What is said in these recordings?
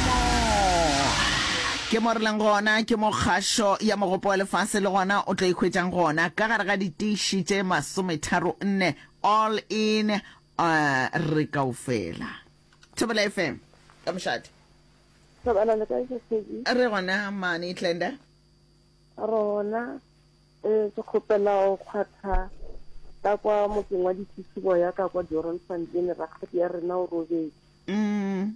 Mo ke mo re leng gona ke mo kgašo ya mogopo wa lefase le gona o tlo ikhwetšang gona ka gare ga ditiši tše masometharo nne all in uh, re kao fela thobela fm ka mošate thobela le kae sesedi re gona mane tlenda rona eh ke kgopela o kgwatha ka kwa motseng wa ditisibo ya ka kwa Doron Fontaine rakgadi ya rena o robetse mm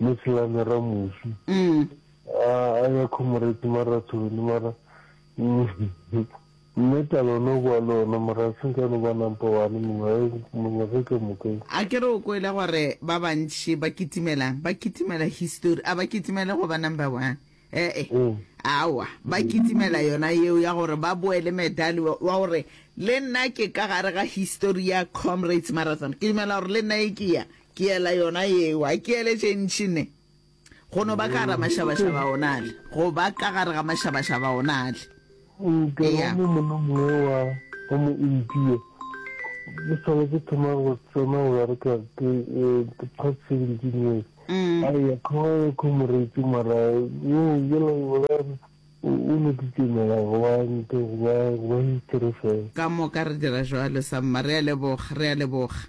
Le se ya le ramusi. A a ya khomoreti marathoni mara mme talo no boa le ona mara a senka no ba nampa wane mongwe a mongwe ge ka moka. A ke re o kwele gore ba bantši ba kitimelang? Ba kitimela histori, a ba kitimele go ba number one. He-e, aowa, ba kitimela yona yeo ya gore ba boe le medali wa wa gore le nna ke ka gare ga histori ya Comrades Marathon. Ke dumela gore le nna e ke ya Ke ela yona yeo, a ke ele tše ntši ne. Go no ba ka gare ga mašabašaba o na le. Go ba ka gare ga mašabašaba o na le. Nke wa mo molomong wo wa, wa mo impio. Ke sale ke thoma go tsena go bereka ke, the past seventeen years. A eya, kgoga ya kho moreetsi mara, wo yola o la re, o, o no titemela go ba nto, go ba, go ba history fela. Ka moka re dira jwalo, Samma. Re a leboga, re a leboga.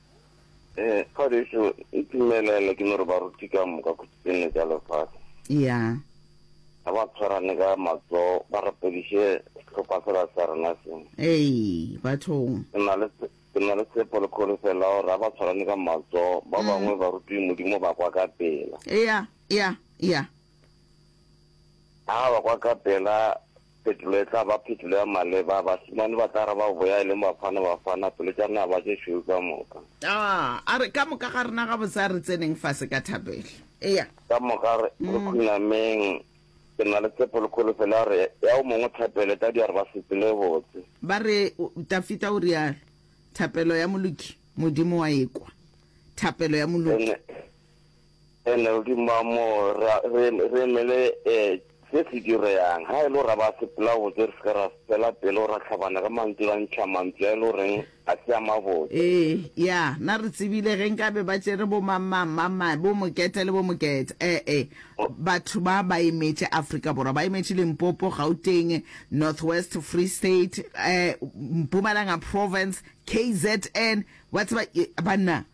Eh, Kgodiso, e timelela ke no re baruti ka moka ko tsene tša lefase. Ya. Ga ba tshwarane ka matso, ba rapediše sehlopha sela sa rena se. Ei, bathong. Ke na le ke na le tshepo le kgodiso la gore ga ba tshwarane ka matso, ba bangwe baruti Modimo ba kwa ka pela. Ya, ya, ya. Ga ba kwa ka pela, Phetolo e tla ba phetolo ya maleba. Bašemane ba tla araba boya e leng Bafana Bafana pelo tša naba tše šweu ka moka. Aa, a re, ka moka ga rena gabotse a re tseneng fase ka thapelo. Eya. Ka moka re, re khunameng. Ke na le tshepo le kholofelo ya gore ya o mongwe thapelo e tla dira gore ba se tsele botse. Ba re, Tafita o realo, Thapelo ya moloki Modimo wa e kwa. Thapelo ya moloki. Hello, ke mamo ra re re mele eh se se direyang ha elo ra ba se pla botse re se ra fela pelo ra tlhabana ka mantsi ra ntsha mantsi a elo reng a se ama botse. Ee, ya, na re tsebile ge nka be ba tšere bo mang mang mang mang bo Moketa le bo Moketa eh eh batho ba ba emetše Afrika Borwa ba emetše Limpopo, Gauteng, North West, Free State eh Mpumalanga Province, KZN wa tseba banna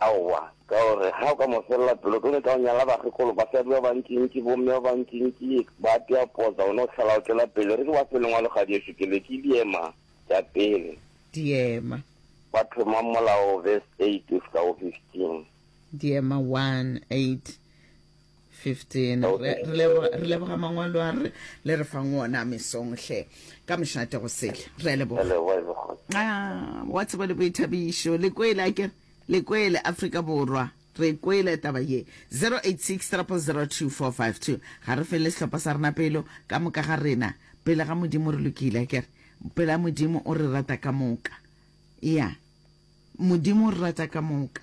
Aowa, ka o re, Ga o ka mo felela pelo, ke nyaka go nyala bakgekolo, basadi ba bantšintši, bomme ba bantšintši, ba apea potsa, o no hlala o tšwela pele. Re ke ba fe lengwa le kgadi ešo ke le, ke diema tša pele. Diema. Ba thomang molao, verse 8 go fihla go 15. Diema 1, 8. 15 re, re, leboga, re leboga mangwalo a re le re fang wona mesong hle ka mošate go sele re a leboga Hello, hello, hello. Ah, wa tseba le boithabišo le kwele a kere le kwele afrika borwa re kwele taba ye 0863002452 ga re fele sehlopha sa rena pelo ka moka ga rena pele ga modimo re lokile a kere pela modimo o re rata ka moka ya modimo o re rata ka moka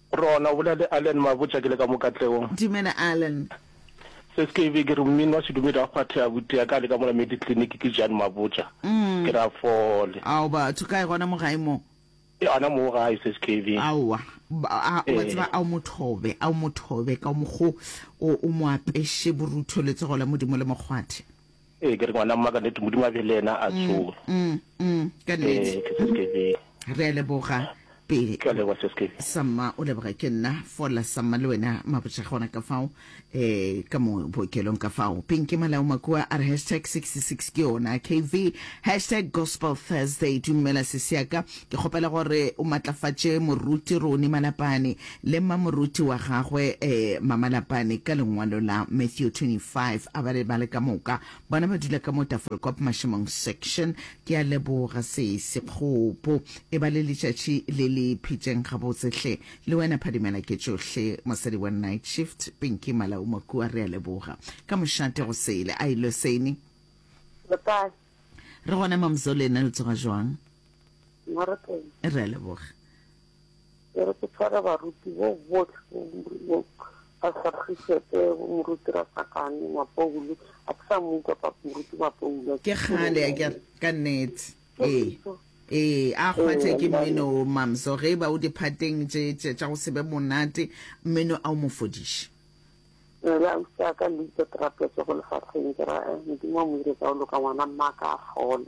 Rona, o bolela le Allen Mabotja, ke le ka mo katleong. Dumela, Allen. Skv. Ke re, Mmin wa sedumedi a kgwathe a butea ka le ka mola Mediclinic, ke Jan Mabotja. Ke re, A fole. Ao, batho kae gona mo gae mo? E, ana moo gae, Skv. Aowa. A, wa tseba, a o mo thobe, a o mo thobe ka mokgo o, o mo apeše borutho letsogo la Modimo le mo kgwathe. Ee, ke re ngwana mma ka nnete Modimo a be le ena a mm, tsoge. Mm, mm, ka nnete. Ee, Re a leboga pele. Ke a leboga seske. Samma o leboga ke nna fola Samma le wena mabotša gona ka fao eh ka mo bookelong ka fao. Pinki Malao Makua a re hashtag 66 ke yona KV hashtag Gospel Thursday dumela sesiaka Ke kgopela gore o matlafatše Moruti Roni Malapane le mmamoruti wa gagwe, eh, Mma Malapane, ka lengwalo la Matthew 25. A ba le bale ka moka. Bona ba dula ka mo Tafelkop Mašemong Section. Ke a leboga, Sesi. Kgopo, e ba le letšatši le le phitšeng gabotse hle. Le wena Phadimela ke tšohle. Mosadi wa Night Shift, Pinky Malaumo kua, re a leboga. Ka mošate go sele. Ai, Loseni. Le kae? Re gona, Mamzoleni. Le tsoga jwang? re a leboga e re ke tshwara baruti bo botlhe ba sagisete moruti ratsakane mapoulo a ke sa mo utlwa pa moruti mapoulo ke kgale a kere ka nnete ee ee a kgwathe ke mmino o mamso ge e ba o diphateng tše tše tša go se be monate mmino a o mo fodiše le a utlwa ka le itse trapetse go lefatsheng ke ra eh, modimo a mo dire ka o loka ngwana mma ka a fole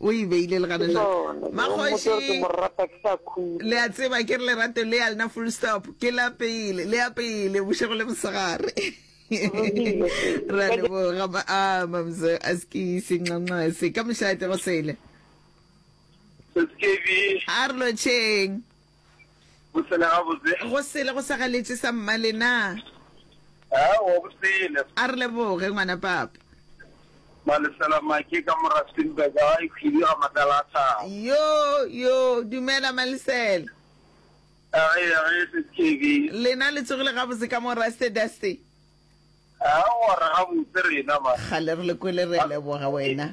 O e beile le gana Ke jwale. yona eo. Mmotse gore ke Makgoši, mo rata ke sa khutla. le a tseba ke re lerato le ya lena full stop ke la pele le ya pele bošego le mosegare Rile se. re a leboga ma a mamzo a skise nxanxase ka mošate go sele Skv. a re lotšheng Go sele gabotse. Go sele go sa galetše sa mmale na? Aowa go sele. A re leboge ngwana papa. Malesela Maki ka Morastenburg ga e khwidi ga matala a thabo. Yo yo dumela Malesela. A re ya re se TV. Lena le tsogile gabotse ka Moraste Daste. Aowa re gabotse rena man. Kgale re le kwele re leboga wena.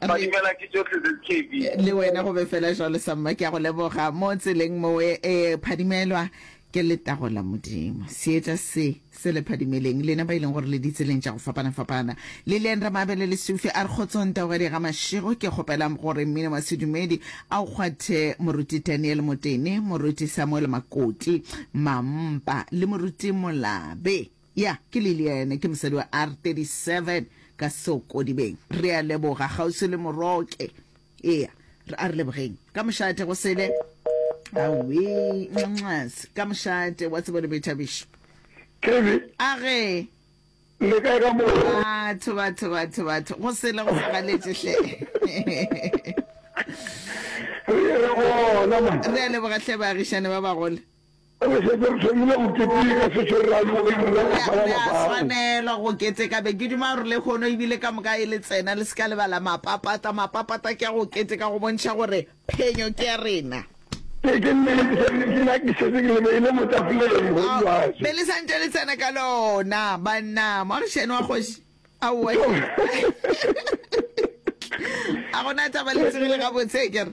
badimela ke tsotlhe tse kb le wena go be fela jalo samma ke ya go leboga mo tseleng mowe e eh, phadimelwa ke letago la modimo seetša se se le phadimeleng lena ba e leng gore le ditseleng tša go fapana-fapana le leng re mabele le sufi a re kgotsong taogadi ga mašego ke kgopelang gore mmino wa sedumedi a o kgwathe moruti daniel motene moruti samuel makoti mampa le moruti molabe Ya, ke Lilian, ke mosadi wa R 37 ka Seokodibeng. Re a leboga, kgauswi le Moroke. Ea, re a re lebogeng. Ka mošate, go sele. Awee, nxas, ka mošate, wa tseba le boithabišo. Kelly, A ge. le kae ka mo? Batho, batho, batho, batho, go sele, go segaletše hle. Re ye re gona, monna. Re a leboga hle, baagišani ba bagolo. Re šetše re thomile go keteka se se ra yo e nna ka fa lapang. Ga re a swanelwa go keteka. Be ke duma gore lehono e bile ka moka e le tsena le se ka lebala mapapata. Mapapata ke a go keteka go bontšha gore phenyo ke ya rena. Ee, ke nnete. Nna ke šetše ke le beile mo tafoleng go bjale. Be le santše le tsena ka lona, banna. Moagišani wa kgoši. Aowa hle. A go na taba le tsogile gabotse, ke re.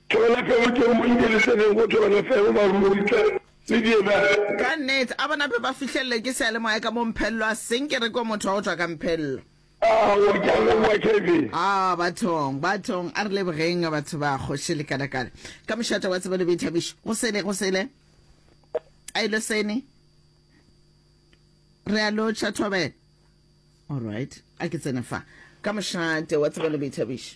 Tšona felo tšeo mo nke le tseneng go tšona felo, baruri tle le diemele. Ka nnete, a bona pe ba fihlellwe ke seyalemoya ka mo Mphello a seng ke rekwe motho wa go tšwa ka Mphello. Aowa, ke a leboga, Kevin. Aa, bathong, bathong, a re lebogeng, batho ba Kgoši Lekalakala. Ka mošate wa tsebo le boithabišo, go sele, go sele, a ilo sene, re a lotšha thobela. All right, a ke tsene fa. Ka mošate wa tsebo le boithabišo.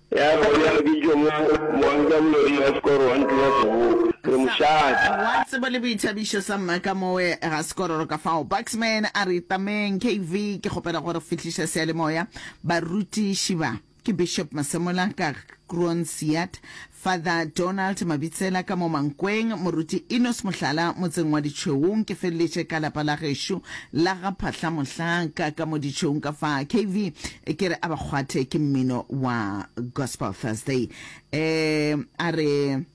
Ya go ya go bitšwa mo moanka moloding wa sekoro wa ntlo ya seboka. Re mo šata. Wa tsebo le boithabišo sa mma ka mowe ga sekororo ka fao. Buxman a re, Itameng, KV, ke kgopela go re fihliša seyalemoya. Barutiši ba ke Bishop Masemola ka Kroonsiad, Father Donald Mabitsela ka mo Mankweng, Moruti Enos Mohlala motseng wa Ditšhweung, ke feleletše ka lapa la gešo la ga Phahlamohlaka ka mo Ditšhweung ka fa. KV, Ke re a ba kgwathe ke mmino wa Gospel Thursday. Um, a re,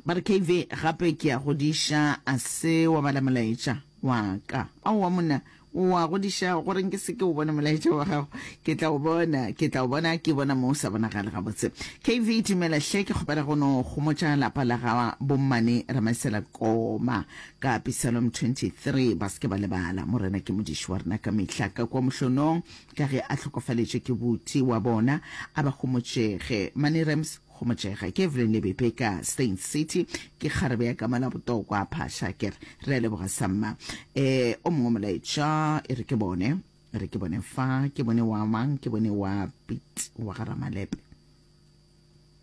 ba re KV gape ke a godiša, a se wa bala molaetša wa ka. Aowa monna, wa godiša gore nke se ke o bona molaetša wa gago. Ke tla o bona, ke tla o bona, ke bona mo o sa bonagale gabotse. KV dumela hle, ke kgopela go no gomotša lapa la ga bommane Ramasela Koma. Ka Psalm 23, Ba se ke ba lebala, Morena ke Modiši wa rena ka mehla, ka kua mohlonong, ka ge a hlokofaletše ke boti wa bona, a ba gomotšege. Money Rams, Gomotšega ke Evelyn Lebepe ka Stains City, ke kgarebe ya kama la botokwa, Phasha ke re, Re a leboga sa mma. E, o mongwe molaetša e re ke bone, e re ke bone fa, ke bone wa mang, ke bone wa Pete wa ga Ramalepe.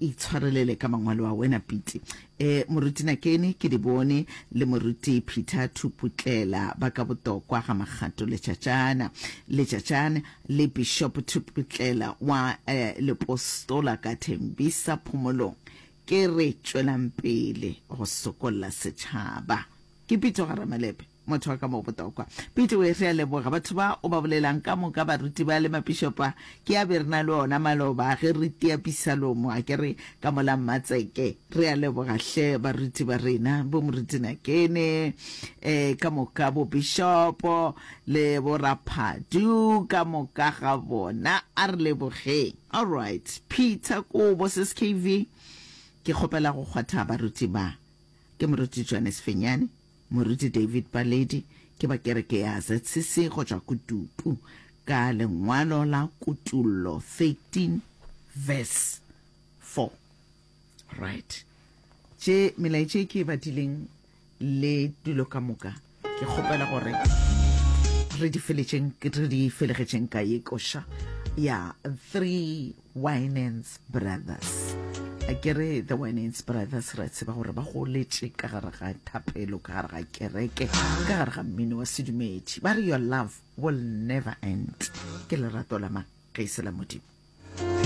Itshwarelele ka mangwalo a wena Piti. E, Moruti Nakeni, ke di bone, le Moruti Peter Thuputlela ba ka botokwa ga Magato Letšatšana. Letšatšane, le Bishop Thuputlela wa e, Lepostola ka Thembisa Phomolong. Ke re tšwelang pele go sokolla setšhaba. Ke Pitso Garamalepe. Motho wa ka mo botokwa. Pete we, re a leboga. Batho ba o ba bolelang ka moka baruti ba le mapišopa ke a be re na le ona maloba ge re tia pisalomo akere ka mola Mmatseke. Re a leboga hle baruti ba rena, bo Moruti Nakene, e, ka moka bo Bishopo le bo Raphadu ka moka ga bona. A re lebogeng. Alright, Peter Kobo skv, ke kgopela go kgwatha baruti ba. Ke Moruti Johannes Fenyane. Moruti David Baledi ke ba kereke ya ZCC go tšwa Kutupu ka lengwalo la Kutullo 13 verse 4. Right. Tše melaetša e ke e badileng le dilo ka moka ke kgopela gore re di feletšeng re di felegetšeng ka ye koša ya 3 Winans Brothers. A ke re The Winans Brothers ra tseba gore ba goletše ka gare ga thapelo, ka gare ga kereke, ka gare ga mmino wa sedumedi. Ba re your love will never end. Ke lerato la mang ge e se la Modimo.